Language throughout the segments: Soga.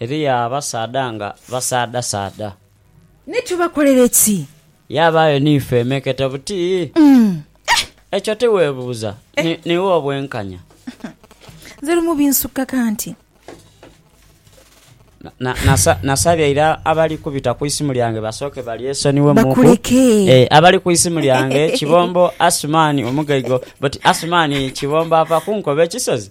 Eriyo abasaadha nga basaadhasaadha. Ni tubakolere ki? Yaabaayo ni feemekete buti? Ekyo tiweebuuza niiwe obwenkanya? Nze lumu binsukka kanti. Nasabye ira abali kubita ku isimu lyange basooke balyesonyiwe muku. Bakuleke. Ee, abali ku isimu lyange Kibombo Asuman Omugaiga oti Asuman Kibombo ava kunkoba ekisozi?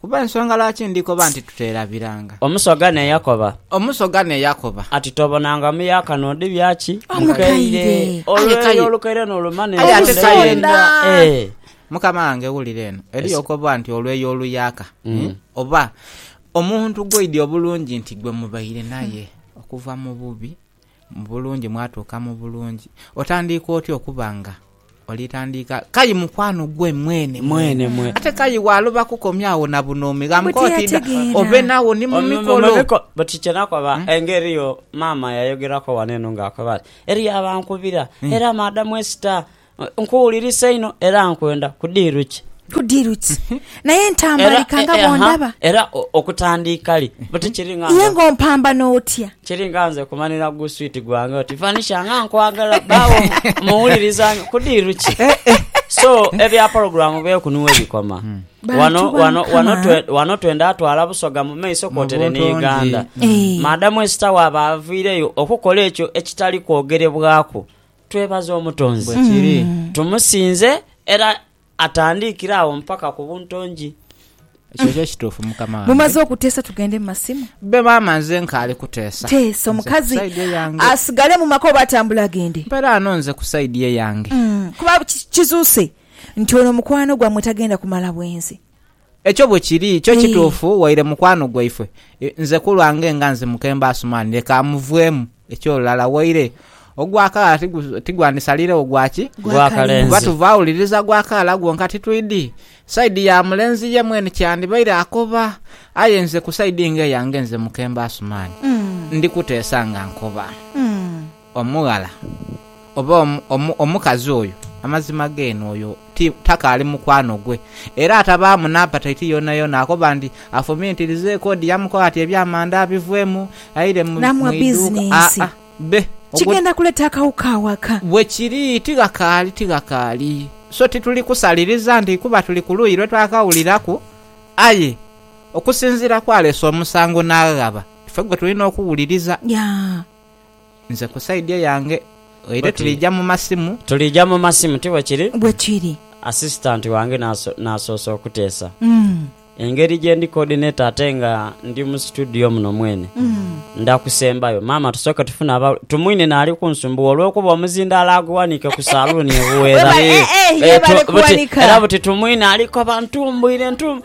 Kuba ensonga lwaki ndi koba nti tuteerabiranga. Omusoga ne yakoba. Omusoga ne yakoba. Ati tobonanga muyaka n'odi bya ki? Mukaire. Olweyo olukaire n'olumana Aye ate endhundo kaire. yenda. Eh. Mukama wange wulira eno. Eriyo okoba nti olweyo oluyaka. Hii. Oba omuntu gw'oidhi obulungi nti gwe mubaire naye okuva mu bubi. Mu bulungi mwatuuka mu bulungi. Otandiika otya okuba nga oli tandiika kayi mukwano gwe mwene mwene ate kayi waloba kukomya agho na bunoomi gha mukooti dha obe nagho ni mu mikolo. Buti kye nakoba engeri yo maama yayogeraku ghano eno nga akoba ati eriyo abankubira era maadamu Esther Nkuwulirisa inho era nkwenda ku diiru ki? Ku diiru ki? Naye ntambalika nga bw'ondaba. Era okutandiika li? Buti kiri nga nze. Ye ng'ompambana otya? Kiri nga nze kumanira gu swiiti gwange oti, Vanisha nga nkwagala, bbaawo mmuwuliriza nyo. Ku diiru ki? So, ebya pologulaamu beeku ni we bikoma. Wano, wano, wano, wano twenda twala Busoga mu maiso kwotere ni Uganda. Maadamu esita waaba avaireyo okukola ekyo ekitali kwogerebwaku. Twebaze Omutonzi. Bwe kiri. Tumusinze era atandiikire agho mpaka ku buntongi. Ekyo kyo kituufu, mukama wange. Mumaze okuteesa tugende mu masimu? Bbe, maama, nze nkaali kuteesa. Teesa Nze ku omukazi side eyange. asigale mu maka oba atambule agende? Mperaano nze ku side eyange. Kuba ki- kizuuse nti ono mukwano gwammwe tagenda kumala bwenzi. Ekyo bwe kiri, kyo kituufu waire mukwano gwaife. Nze ku lwange nga nze Mukembo Asuman, leka amuvwemu. Eky'olulala, waire ogwakaala tigwandisaliiregho gwa ki? Gwa kalenzi. Kuba tuva wuliriza gwa kaala gwonka titwidi saidi ya mulenzi ye mwene kye yandibaire akoba. Aye nze ku saidi ng'eyange nze Mukembo Asuman, ndi kuteesa nga nkoba. Omughala oba omukazi oyo, amazima geene oyo ti, takaali mukwano gwe. Era atabaamu n'apataiti yoonayoona, akoba nti afumiitirizeeku odi yamukoba ati eby'amanda abivwemu, aire mu, Namwa mu iduuka. bizinensi. Aa, be. Ogwo. Kigenda kuleta akawuka awaka. Bwe kiri, tighakaali, tighakaali. So tituli kusaliriza nti kuba tuli ku luuyi lwe twakawuliraku, aye okusinziira ku aleese omusango n'aghaba, ife gwe tulina okuwuliriza. Ya. Nze ku side yange oire Oti- tuliija mu masimu. Tuliija mu masimu, ti bwe kiri? Bwe kiri. Assistant wange n'aso- n'asoosa okuteesa Mm. engeri gye ndi coordinator ate nga ndi mu situdiyo muno mwene. Nda kusembayo. Maama tusooke tufune aba... Tumwine naali kunsumbuwa olw'okuba omuzindaalo aguwaniike ku saluuni e Buweera. Webale- eh, eh, ye Eh, tu- bale buti- kuwanika. Era buti Tumwine aliko bantumbuire ntu-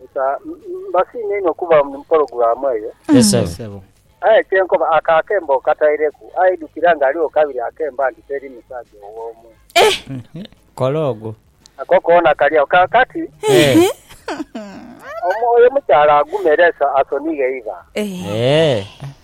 Musa, mbasiima inho okuba mu pologulaamu eyo. Yes ssebo. Aye kye nkoba, ako akembo okataireku, aidhukira nga aligho kabiri akemba nti teri musaja ow'omu. Kola ogwo. Ako koona kali agho. Kaakati, omu, oyo omukyala agume era asonighe eiva. Eeh.